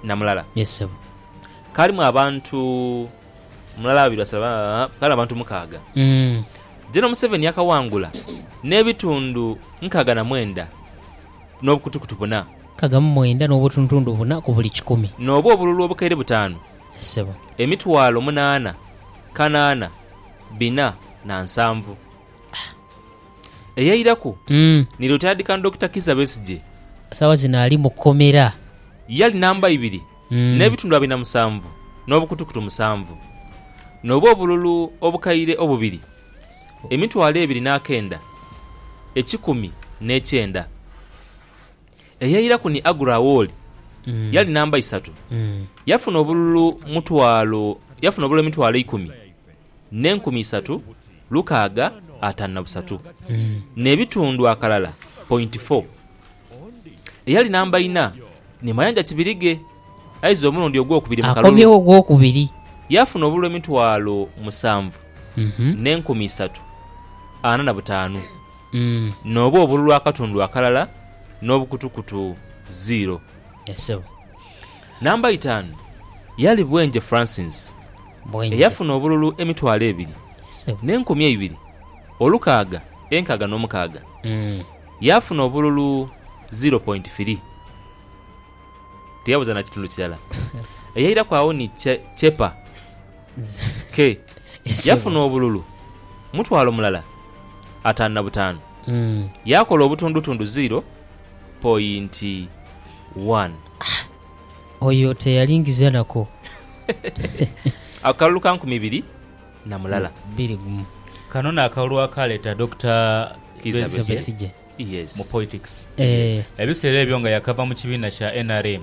Na mulala. Yes ssebo. Kaalimu abantu mulala babiri basatu ba, kaalimu abantu mukaaga. Mm. General Museveni yakawangula n'ebitundu nkaaga na mwenda n'obukutukutu buna. Nkaaga mu mwenda n'obutuntundu buna ku buli kikumi. N'obwo obululu obukaire butaanu. Yes ssebo. Emitwalo munaana, kanaana, bina na nsanvu. Ah! Eyairaku ni Lyotaadhikano Dokita Kizza Besigye. Sawa zino ali mu komera. Yali namba ibiri n'ebitundu abiri na musanvu n'obukutukutu musanvu, nobu obululu obukaire obubiri emitwalo ebiri n'akenda ekikumi n'ekyenda. Eyairaku ni Agur Awol. Yali namba isatu. Yafuna obululu mutwalo yafuna obululu emitwalo eikumi. n'enkumi isatu lukaaga ataanu na busatu, n'ebitundu akalala pointi fo. Eyali namba ina ni Mayanja Kibirige, aiza omulundi ogwokubiri mu kalulu. Akomyewo ogwokubiri. Yaafuna obululu emitwalo musanvu n'enkumi isatu ana na butaanu, n'obwo obululu akatundu akalala n'obukutukutu ziiro. Namba itaanu yaali bwenje fransinsi eyafuna obululu emitwalo ebiri n'enkumi eibiri olukaaga enkaaga n'omukaaga, yaafuna obululu ziro pointi firi, tiyabuza na kitundu kirala. Eyairaku agho ni Chepa ke yafuna obululu mutwalo mulala ataanu na butaanu, yaakola obutundutundu ziro pointi one. Ah! Oyo teyalingiza nako. Akalulu ka nkumi ibiri na mulala. Biri gumu. Kano n'akalulu akaaleeta Dokita Kiiza Besigye mu poitics ebiseera ebyo nga yakava mu kibiina kya nrm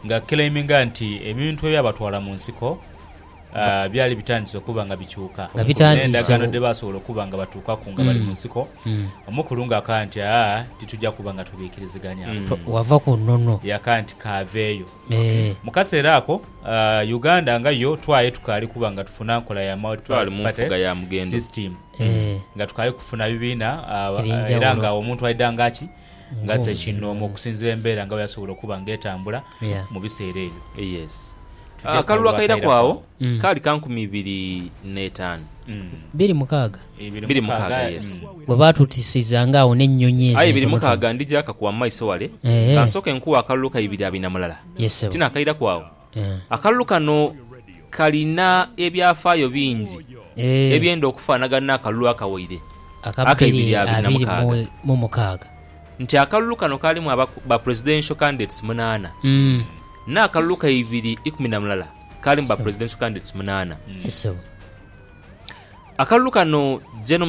nga aclaiminga nti ebintu ebyabatwala mu nsiko byali bitandise okuba nga bikyuka n'endagaano dhe baasobola okuba nga batuukaku nga bali mu nsiko, omukulu ng'akaya nti, Aa, titwija kuba nga twebiikiriziganyaku. Wava ku nnono. Yakaya nti, K'aveeyo. Mu kaseera ako, Uganda nga yo twaye tukaali kuba nga tufuna nkola ya multi-party system, nga tukaali kufuna bibiina era nga omuntu aidha nga ki. Ng'azze kinoomu okusinzira embeera nga bweyasobola okuba ng'etambula mu biseera ebyo. Yes. Akalulu akairaku agho kaali ka nkumi ibiri n'etaanu. Biri mukaaga? Biri mukaaga, yes. Bwe baatutisizanga agho n'ennyonyi ezo entonotono. Aye biri mukaaga ndija kakuwa mu maiso wale, kansooke nkuwe akalulu ka ibiri abiri na mulala. Tinakairaku agho. Akalulu kano kalina ebyafaayo bingi ebyenda okufaanagana n'akalulu akawaire aka ibiri abiri na mukaaga. Nti akalulu kano kaalimu ba presidential candidates munaana, n'akalulu ka ibiri ikumi na mulala kaalimu ba presidential candidates munaana. Akalulu kano Gen.